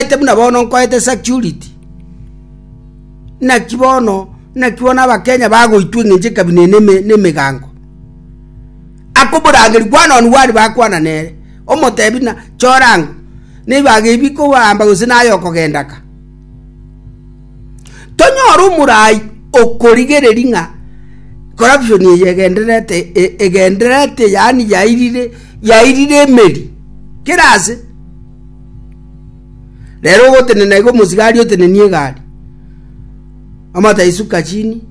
Nkorete buna bono nkoete security. Naki bono, naki bono abakenya bagoitwa eng'encho ekabina ene eme- na emegango. Aka oborangeri kwana one one bakwana nere, omotebi na chorango, na ebibaga ebi bikoamba gose naye okogenda ka. Tonyore omorai okorigereri ng'a corruption eye egendererete e- egendererete yaani yairire yairire emeri kera ase. Rero ogotenena iga omosigari otenenie egari, amate aisuka chini,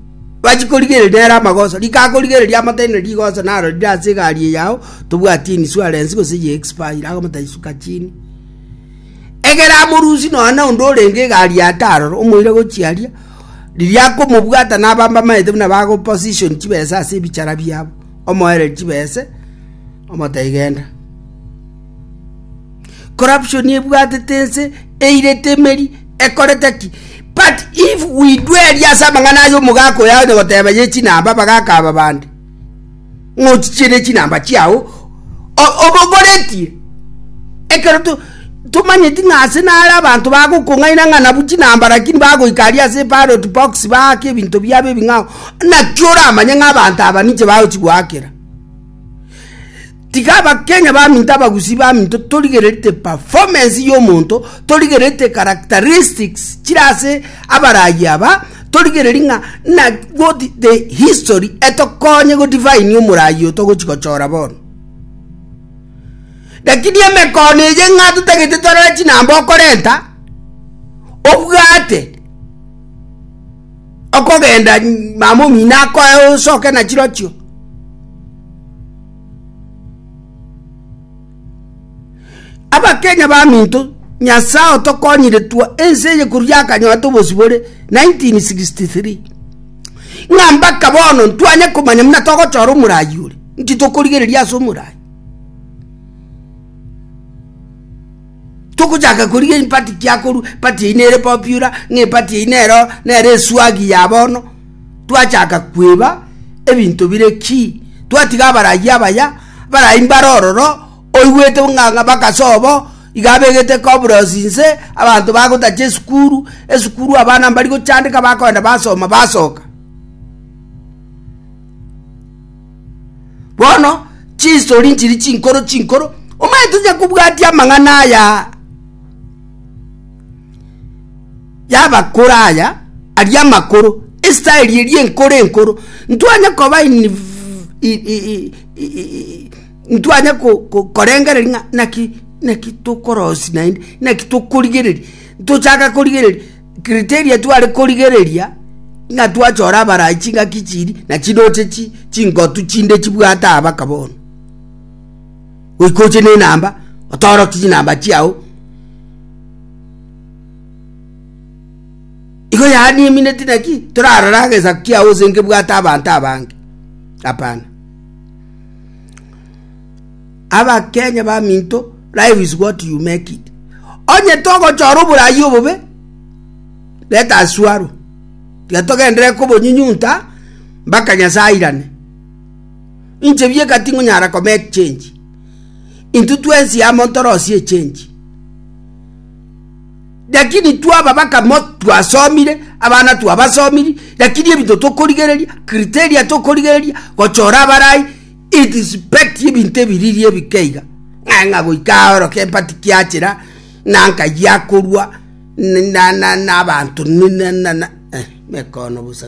bachie korigereria nere amagoso. Rika akorigereria amate ere rigoso naro rire ase egari eye yao, tobwati insurance gose ye expire agamate aisuka chini. Egere amorusie nonya na onde orenge egari aa tarora, omoire gochia aria, riria akomobwata nabo mbamaete buna bago position chibesa ase ebichara biabo, omoereri chibese, omote genda. corruption ebwatete ense eirete emeri ekorete ki but if we dweri ase amang'ana ayo omogaka oyo aonye goteba ye chinamba abagaka aba bande ng'ochichiere chinamba chiao obogoretie ekero to tomanyeti ng'a ase nare abanto bagokong'aina ng'a nabu chinamba lakini bagoika aria ase ballot box baake ebinto biabo ebing'ao naki oramanye ng'a abanto aba ninche bagochi goakera. Tiga abakenya baminto abagusi baminto torigererete performance y'omonto, torigererete characteristics chire ase abarayi aba, torigereri ng'a na what the history etokonye go define omorayi oyo togochi gochora bono. Lakini emekono eye ng'a totagete torore chinamba okorenta, obwate okogenda mama omino akoe osoke nachirochio Abakenya baminto, Nyasae otokonyire twa ense eye korwa yakanyoete obosibore 1963. Ng'a mpaka bono ntwanye komanya muna togochora omorai ore, nki tokorigereria ase omorai. togochaka koriga empati kiakoru pati eye nere popular ng'a empati eye nero nere eswagi ya bono twachaka kweba ebinto bire ki? Twatiga abarayia abaya barayi mbare ororo, oigwete ng'a ng'a bakase obo, iga abegete kobrosi inse, abanto bagotacha esukuru, esukuru abana mbari gochandeka bakoenda basoma basoka. Bono chistori nchiri chinkoro chinkoro, omanyete onye kobwatia amang'ana aya y'abakoro aya aria amakoro, esitaeli eria enkoro enkoro, ntwanye koba ntwanye korengereria ng'a naki naki tokorosi naende, naki tokorigereria, tochaka korigereria criteria tware korigereria ng'a twachora abarai chingaki chiria nachiroche chi chingotu chinde chibwate aba baka bono. Goika oche nenamba, otoroki chinamba chiao. Igo yaani emineti naki torarore agesaku kiao ase nkebwate abanto abange? Hapana. Abakenya baminto, life is what you make it. Onye togochora oborayi obobe, let us swallow. Tiga togendere kobonyinyunta mpaka Nyasae airane. Inche bieka tingonyara komake change. intwe twensi amo ntorosie echenji. Lakini twa ababaka mo twasomire, abana twabasomiri, lakini ebinto tokorigereria, criteria tokorigereria, gochora abarai, it is pet ebinto ebiriri ebikeiga. Ng'a ng'a goika aoro kempati kiachera, na nkayi akorua, na na na abanto, na na na na eh, mekono bosa.